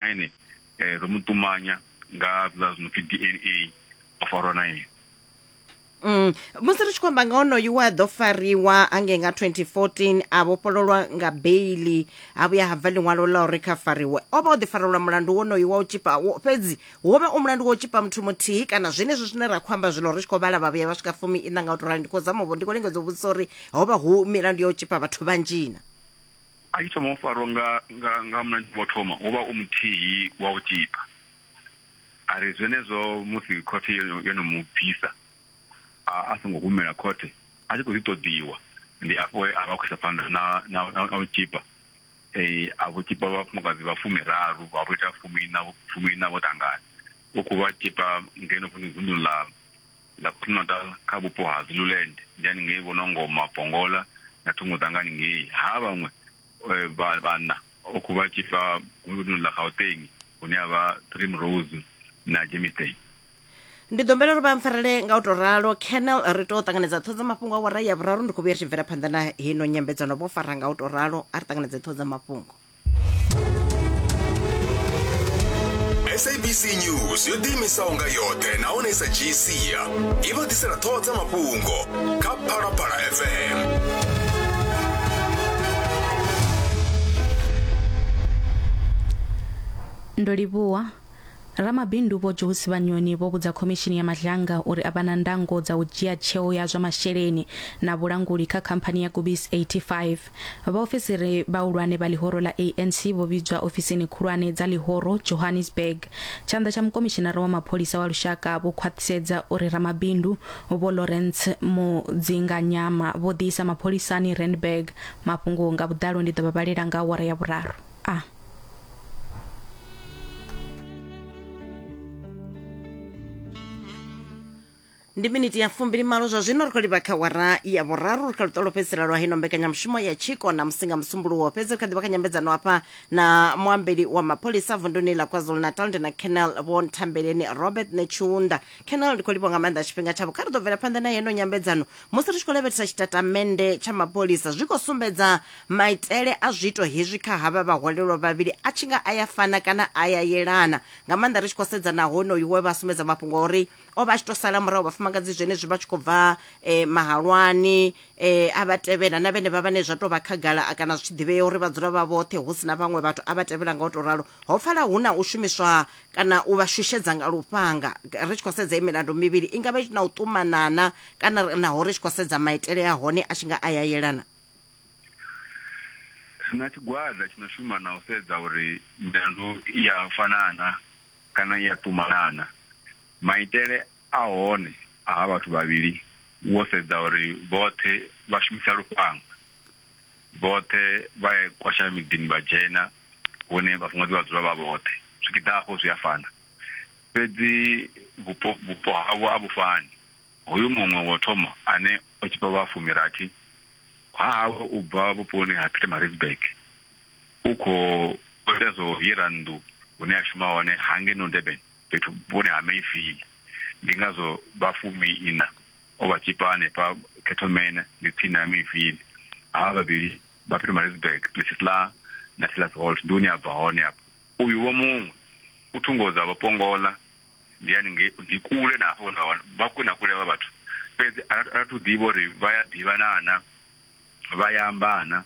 ene eh, ro mu ṱumanya nga zwiḽa zwi no pfi dna o farwa na ene Mm. musi ri tshi khou amba nga onoyu we a ḓo fariwa angei nga 2014 a vhofhololwa nga beili ha vhuya ha bva ḽiṅwalo ḽa uri kha fariwe o vha o ḓifarelwa mulandu wonoyu wa u tshipa wo- fhedzi wo vha u mulandu wa u tshipa muthu muthihi kana zwenezwi zwine ra khou amba zwino ri tshi khou vhala vha vhuya vha swika fumi ina nga u to rali ndi khou zama u vho- ndi khou lingedza u vhudzisa uri ho vha hu milandu ya u tshipa vhathu vhanzhina A tshi thoma u farwa nga nga nga munna wa thoma u vha u muthihi wa u tzhipa. A ri zwenezwo musi khothe yo yo no mu bvisa a a songo humela khothe a tshi khou ḓi ṱoḓiwa ndi afho he a vha a khou isa phanḓa na na na na u tzhipa eh, a vho tzhipa vhafumakadzi vha fumiraru vha vho ita fumiiṋa fumiiṋa vho ṱangana u khou vha tzhipa ngeno vunḓuni ḽa Ḽa KwaZulu-Natal kha vhupo ha Zululand ndi haningei vho Nongoma, Pongola na thungo dza nga haningei. Ha vhaṅwe vha vhanna vhokhu vha tshi bva vunḓuni ḽa Gauteng hune ha vha Primrose na Germiston. Ndi ḓo humbela uri vha mpfarele nga u tou ralo. Colonel, ri tou ṱanganedza ṱhoho dza mafhungo awara ya vhuraru. Ndi khou vhuya ri tshi bvela phanḓa na heino nyambedzano. Vho fara nga u tou ralo. A ri ṱanganedze ṱhoho dza mafhungo. sabc news yo ḓiimisaho nga yoṱhe nahone sa gcia i vha ḓisela ṱhoho dza mafhungo kha phalaphala fm ndo livhuwa Ramabindu Vho Josi Vhanyoni vho vhudza Khomishini ya Madlanga uri a vha na ndango dza u dzhia tsheo ya zwa masheleni na vhulanguli kha khamphani ya Gubis 85. Vhaofisiri vhahulwane vha ḽihoro ḽa ANC vho vhidzwa ofisini khulwane dza ḽihoro Johannesburg. Tshanḓa tsha Mukomishinara wa Mapholisa wa Lushaka vho khwaṱhisedza uri Ramabindu Vho Lawrence Mudzinganyama vho ḓiisa mapholisani Randburg. Mafhungo nga vhuḓalo ndi ḓo vha vhalela nga awara ya vhuraru. a. ndi miniti ya fumbili malo zwa zwino ri khou livha kha wara ya vhuraru ri kha luṱolo fhedzisela lwa hino mbekanyamushumo ya tshiko na musinga musumbuluwo fhedzi ri kha ḓivha kha nyambedzano hafha na muambeli wa mapholisa vunduni ḽa kwazulu natal ndi na canal vho nthambeleni robert netshiunda canal ndi khou livha nga maanḓa tshifhinga tshavho kha ri ḓo bvela phanḓa na yeno nyambedzano musi ri tshi khou lavhelesa tshitatamennde tsha mapholisa zwi khou sumbedza maitele a zwiito hezwi kha havha vhaholelwa vhavhili a tshi nga a ya fana kana a ya yelana nga maanḓa ri tshi khou sedza na honoyu we vha sumbedza mafhungo a uri o vha a tshi tou sala murahu vhafumakadzi zwenezwi vha tshi khou bva um mahalwani um a vha tevhela na vhene vha vhane zwa tou vha khagala kana zwi tshi ḓivhea uri vha dzula vha vhoṱhe hu si na vhaṅwe vhathu a vha tevhela nga u tou ralo ho pfala hu na u shumiswa kana u vha shushedza nga lufhanga ri tshi khou sedza milandu mivhili i ngavha na u ṱumanana kana naho ri tshi khou sedza maitele a hone a tshi nga a ya yelana na tshigwada tshi no shuma na u sedza uri milandu ya fanana kana ya ṱumanana maitele a hone a ha vhathu vhavhili wo sedza uri vhoṱhe vha shumisa lufhanga vhoṱhe vha kwasha miḓini vha dzhena hune vhafumakadzi vha dzula vha vhoṱhe zwipiḓa hafho zwi a fana fhedzi vhupo vhupo havho a vhu fani hoyu muṅwe wo thoma ane o tshifha vha fumirathi ha hawe u bva vhuponi ha Pietermaritzburg u khou ita zwo hira nnḓu hune a shuma hone hange no Durban fhethu vhuponi ha Mayfield ndi ngazwo vha fumi ina o vha tshifha hanefha Ketomene ndi tsini ha Mayfield ha vhavhili Bapietermaritzburg places ḽa Natilas Holt ndi hune a bva hone afho uyu vho muṅwe u thungo dza vhapongola ndi yani nge ndi kule na hafho na vha kule na kule vha vhathu fhedzi a ra thu ḓivha uri vha ya ḓivhana na vha ya ambana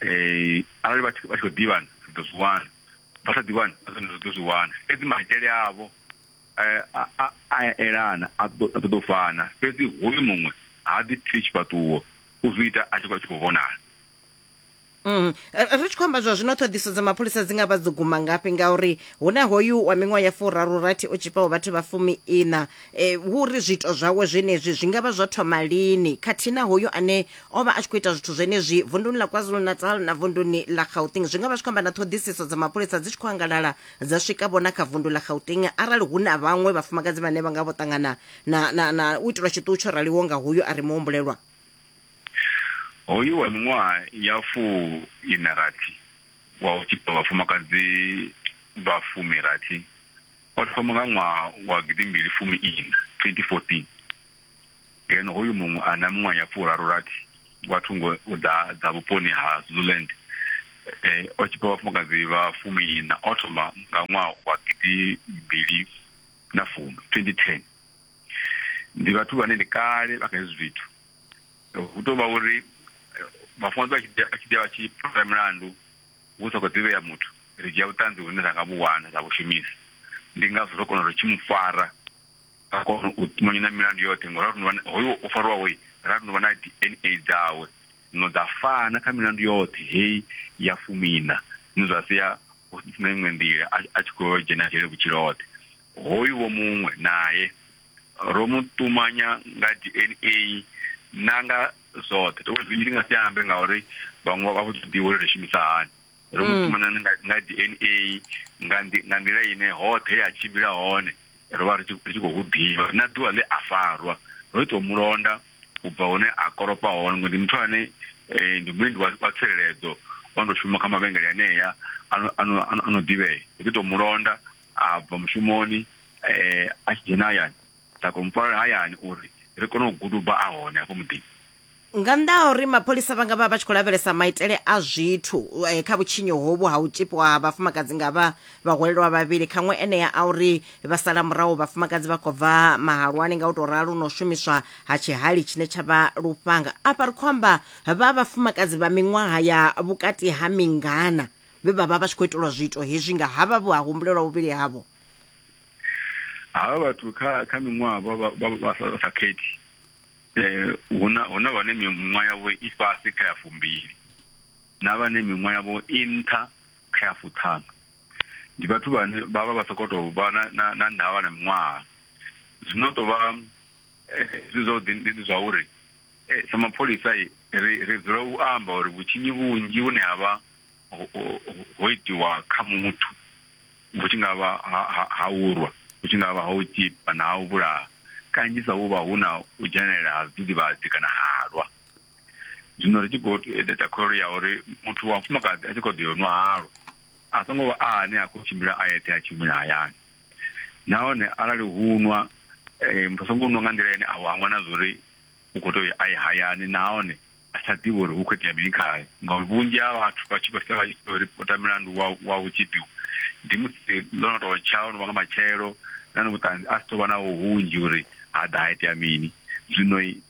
eh arali vha tshi khou ḓivhana ri ḓo zwi wana vha sa ḓivhani a ri ḓo zwi wana fhedzi maitele avho a a elana a ṱoḓa u fana fhedzi hoyu muṅwe ha ḓi pfi tshifhaṱuwo u zwi ita a tshi vha tshi khou vhonala Mm. ri tshi khou amba zwa zwino ṱhoḓiso dza mapholisa dzi nga vha dzo guma ngafhi ngauri hu na hoyu wa miṅwaha ya furaru rathi o tshipaho vhathu vha fumi ina e, hu uri zwiito zwawe zwenezwi zwi nga vha zwo thoma lini khathihi na hoyu ane o vha a tshi khou ita zwithu zwenezwi vunduni ḽa kwazulu-natal na vunduni ḽa gauteng zwi nga vha zwi khou amba na ṱhoḓisiso dza mapholisa dzi tshi khou angalala dza swika vhona kha vundu ḽa gauteng arali hu na vhaṅwe vhafumakadzi vhane vha nga vho ṱangana na, na, na u itelwa tshiṱuhu tsho raliho nga hoyu a re muhumbulelwa hoyu wa miṅwaha ya fuu ina rathi wa u tshipa vhafumakadzi vha fumi rathi o thoma nga ṅwaha wa gidimbili fumi ina 2014 ngeno hoyu muṅwe a na miṅwaha ya furaru rathi wa thungo dza dza vhuponi ha zuland eh, o tshipa vhafumakadzi vha fumi ina o thoma nga ṅwaha wa gidimbili na fumi 2010 ndi vhathu vhane ndi kale vha kha hezwi zwithu hu tou vha uri eh, vhafumakadzi vha tshi ḓi vha tshi phasa milandu hu sa khou ḓivhea muthu ri dzhia vhuṱanzi vhune ra nga vhu wana ra vhu shumisa ndi ngazwo ro kona uri tshi mu fara ra kona u tumanyana milandu yoṱhe ngori ra rinuvha hoyo o farwaho ra rinuvha na d n a dzawe no dza fana kha milandu yoṱhe heyi ya fumina zwine zwa sia na iṅwe nḓila a tshi khou dzhena dzhele vhutshilo hoṱhe hoyu vho muṅwe naye ro mu ṱumanya nga dna na nga zwoṱhe to zwi ndi nga si ambe ngauri vhaṅwe vha vho ḓivha uri ri shumisa hani ro mu mm. ṱumanya nga dna nga nḓila ine hoṱhe ya tshimbila hone ro vha ri tshi khou ḓivha na ḓuvha ḽe a farwa ro tou mulonda u bva hune a koropa hone ngori ndi muthu ane um ndi muendi wa tsireledzo ono tou shuma kha mavhengele anea ano ḓivhea ndi ḓi tou mu londa a bva mushumoni um a tshi dzhena hayani nda kona mufarela hayani uri ri kone u guduba a hone hafho muḓini nga nnḓa ha uri mapholisa vha nga vha vha tshi khou lavhelesa maitele a zwithu eh, kha vhutshinyo hovhu ha u tzhipiwa ha vhafumakadzi nga vha Vhahwelelwa vhavhili kha ṅwe enea a uri vha sala murahu vhafumakadzi vha khou bva mahalwani nga u tou ralo na u shumiswa ha tshihali tshine tsha vha lufhanga. Afha ri khou amba vha vhafumakadzi vha miṅwaha ya vhukati ha mingana vhe vha vha vha tshi khou itelwa zwiito hezwi nga havha vhe ha humbulelwa vhuvhili havho. Havha vhathu kha kha miṅwaha vha vha vha vha sa vha sa khethi eh hu na hu na vhane miṅwaha yavho i fhasi kha ya fumbili na vhane miṅwaha yavho i nṱha kha ya fuṱhanu ndi vhathu vhane vha vha vha soko to vha na na na ndavha na miṅwaha zwino to vha eh, zwi zwa ḓi ndi zwa uri eh, sa mapholisa ri ri dzula u amba uri vhutshinyi vhunzhi vhune ha vha ho itiwa kha muthu vhu tshi nga vha ha urwa vhu tshi nga vha ha u tshipa na ha u vhulaha kanzhisa hu vha hu na u dzhenelela ha zwidzivhadzi kana halwa zwino ri tshi khou ita kholelo ya uri muthu wa mufumakadzi a tshi khou ḓo yo nwa halwa a songo vha a ane a khou tshimbila a yeṱhe a tshi humela hayani nahone arali hu nwa um muthu a songo nwa nga nḓila ine a u hangwa na zwori u khou tea a ye hayani nahone a sa ḓivhi uri hu khou itea mini khae ngauri vhunzhi ha vhathu vha tshi khou sia vha tshi ḓo ripota milandu wa wa u tshi ḓiwa ndi musi ḽo no tou tsha o no vha nga matshelo na ni vhuṱanzi a si tou vha naho hunzhi uri ha ḓa ha itea mini zwino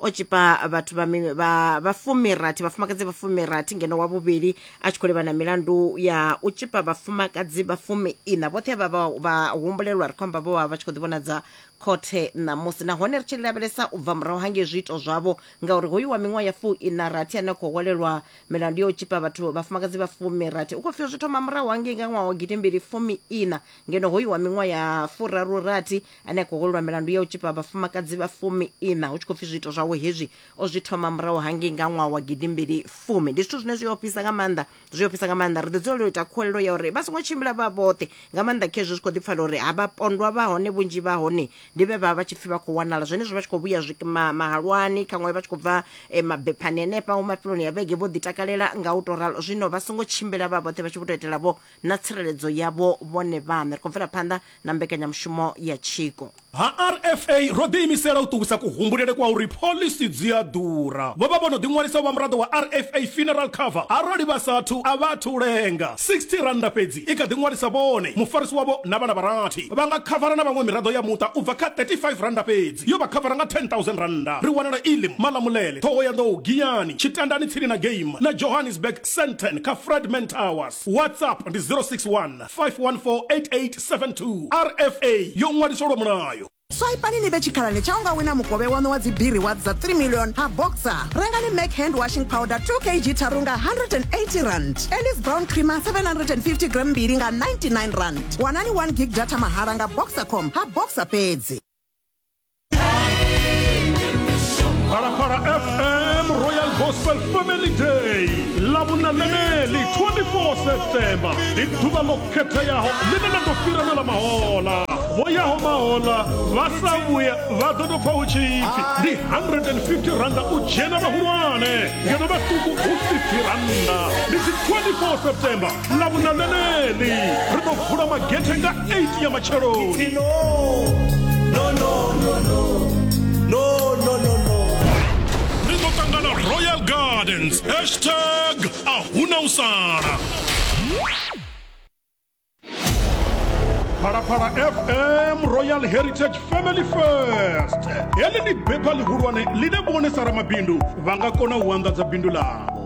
o tshipa vhathu vha mi- vha vha fumirathi vhafumakadzi vha fumirathi ngeno wa vhuvhili a tshi khou livhana milandu ya u tshipa vhafumakadzi vha fumi ina vhoṱhe vha vha vha humbulelwa ri khou amba vho vha vha tshi khou ḓivhonadza khothe ṋamusi nahone ri tshi lavhelesa u bva murahu hangei zwiito zwavho ngauri hoyu wa miṅwaha ya fu ina rathi ane a khou hwalelwa milandu ya u tshipa vhathu vhafumakadzi vha fumirathi u khou pfhi zwi thoma murahu hangei nga ṅwaha wa gidimbili fumi ina ngeno hoyu wa miṅwaha ya furaru rathi ane a khou holelwa milandu ya u tshipa vhafumakadzi vha fumi ina hu tshi khou pfi zwiito zwawe hezwi o zwi thoma murahu hangei nga ṅwaha wa gidimbili fumi ndi zwithu zwine zwi ofhisa nga maanḓa zwi ofhisa nga maanḓa ri ḓo dzulela u ita khuwelelo ya uri vha songo tshimbila vha vhoṱhe nga maanḓa khezwi zwi khou ḓi pfala uri ha vha pondwa vha hone vhunzhi vha hone ndi vhe vha vha tshi pfi vha khou wanala zwenezwo vha tshi khou vhuya zwi- ma- mahalwani khaṅwe vha tshi khou bva eh, mabephani henefha hu mafheloni ya vhege vho ḓi takalela nga u tou ralo zwino vha songo tshimbila vha vhoṱhe vha tshi vho tou etela vho na tsireledzo yavho vhone vhaṋe. Ri khou bvela phanḓa na mbekanyamushumo ya tshiko. Ha RFA, ro ḓiimisela u ṱuwisa kuhumbulele kwa uri phoḽisi dzi a ḓura. Vho vha vho no ḓiṅwalisa u vha muraḓo wa RFA Funeral Cover arali vha sa athu, a vha athu u lenga. R60 fhedzi i kha ḓi ṅwalisa vhone, mufarisi wavho na vhana vha rathi. Vha nga khavara na vhaṅwe miraḓo ya muṱa u bva kha R35 fhedzi. Yo vha khavara nga R10,000. Ri wanala Elim, Malamulele, Thohoyanḓou, Giyani, Tshitandani tsini na Game na Johannesburg, Sandton kha Fredman Towers. WhatsApp ndi 061 5148872 RFA yo ṅwaliswa lwa mulayo. swaipani ni vhe tshikhalani tsha u nga wina mukovhe waṋu wa dzibiri wa dza 3 million ha boxer rengani mac hand washing powder 2 kg tharu nga 180 rand elis brown creamer 750 gram mbili nga 99 rand wanani 1 gig data mahala nga boxer com ha boxer fhedzi Parapara FM Royal Gospel Family Day ḽa vhunaneneli 24 September ndi ḓuvha ḽo khetheaho ḽine ḽa ḓo fhira na ḽa mahola vho yaho mahola vha sa vhuya vha ḓo tou pfa hu tshi pfi ndi 150 randa u dzhena vhahulwane ngeno vhaṱuku hu 50 randa ndi dzi 24 September na vhuna ḽeneḽi ri ḓo vula magethe nga 8 ya matsheloni ri ḓo ṱangana royal gardens hashtag a huna u sala phalaphala fm royal heritage family first heḽi ndi bepha ḽihulwane ḽine vhone sa ramabindu vha nga kona u anḓadza bindu ḽavho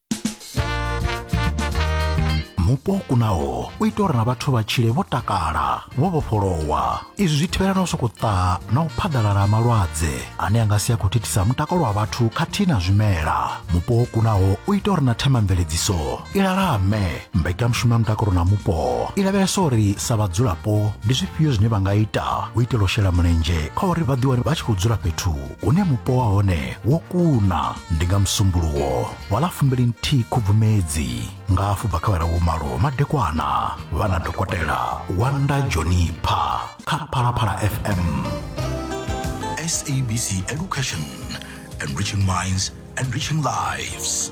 mupo kunaho u ita uri na vhathu vha tshile vho takala vho vhofholowa izwi zwi thivhela na u sokou ṱaha na u phaḓalala malwadze ane a nga si a khou thithisa mutakalo wa vhathu khathihi na zwimela mupo wo kunaho u ita uri na themamveledziso i lalame mbekanyamushumo ya mutakalo na mupo i lavhelesa uri sa vhadzulapo ndi zwifhio zwine vha nga ita u itela u shela mulenzhe kha uri vha ḓiwane vha tshi khou dzula fhethu une mupo wa hone wo kuna ndi nga musumbuluwo wa ḽa fumbili nthihi khubvumedzi nga afho bva kha vhara vhumalo madekwana vha na dokotela wanda jonipha kha phalaphala fm sabc education enriching minds enriching lives